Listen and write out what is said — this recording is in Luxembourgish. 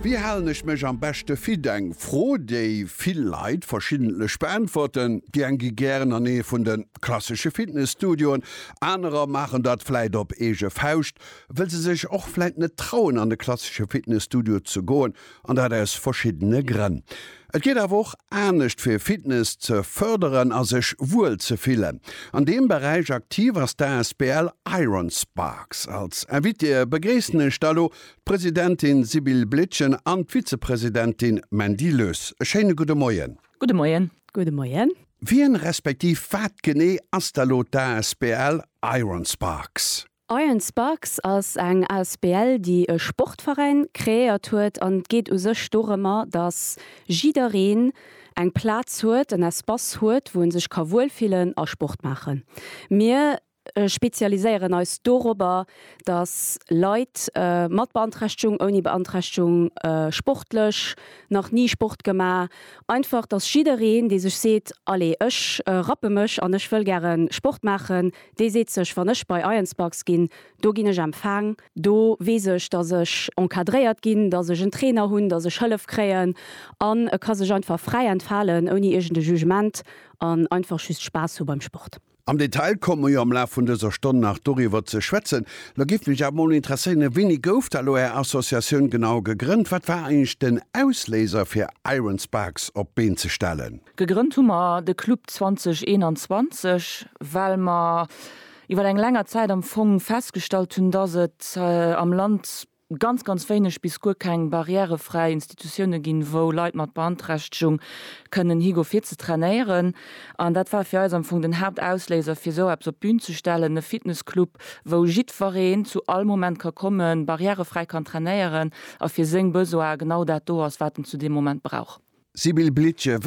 Wéi halen ech mech am beschte fit? Eng Fro, déi vill Leit verschiddentlech beäntwerten. Déi eng gi gären an ee vun de klassesche Fitnesstudioen, anerer maachen dat vläit op eege Fauscht, wëll se sech och vläit net trauen, an de klassesche Fitnesstudio ze goen, An dat aus verschiddene Grënn. Et geet awer och anescht fir Fitness ze fërderen a sech wuel ze fillen. An deem Beräich aktiv ass d'Asbl Iron Sparks. Als Invitée begréissen ech da lo d'Presidentin Sibylle Blietgen an d'Vizepresidentin Mandy Lös. E schéine gudde Moien. Gudde Moien. Gudde Moien. Wien, respektiv wat genee ass da lo d'Asbl Iron Sparks? Iron Sparks ass eng Asbl déi e Sportveräin kreéiert huet an et geet u sech dorëmmer dass jiddereen eng Plaz huet, en Espace huet wou en sech ka wuel fillen a Sport maachen. Mir spezialiséieren eis dorobber dass Leit mat Beanträchtegung, ouni Beanträchtegung, sportlech, nach ni Sport gema, einfach dass jiddereen dee sech seet allez ech rappe mech an ech wëll gären Sport maachen, Dee seet sech, wann ech bei Ironspux ginn, do ginn ech empfaang, do weess ech, datt ech encadréiert ginn, datt ech en Trainer hunn, datt ech Hëllef kréien an e ka sech einfach fräi entfalen ouni iergende Jugement an einfach just Spaass hu beim Sport. Am Detail komme mer jo am Laf vun dëser Stonn nach doriwwer ze schwätzen. Lo géif mech awer mol interesséieren, Wéini gouf da lo Är Associatioun genau gegrënnt? Wat war eigentlech den Ausléiser fir Ironspux op d'Been ze stellen? Gegrënnt hu mer de Club 2021, well mer iwwer eng länger Zäit am Fong festgestallt hunn, dass et am Land ganz, ganz wéineg bis guer keng barrièrefräi Institutioune ginn, wou Leit mat Beanträchtegung kënnen higo fir ze trainéieren. An dat war fir eis am Fong den Haaptausléiser, fir esou eppes op d'Bün ze stellen, e Fitnessclub, wou jiddwereen zu all Moment ka kommen, barrièrefräi kann trainéieren a fir seng Besoine genau dat do ass, wat en zu deem Moment brauch. Sibylle Blittgen,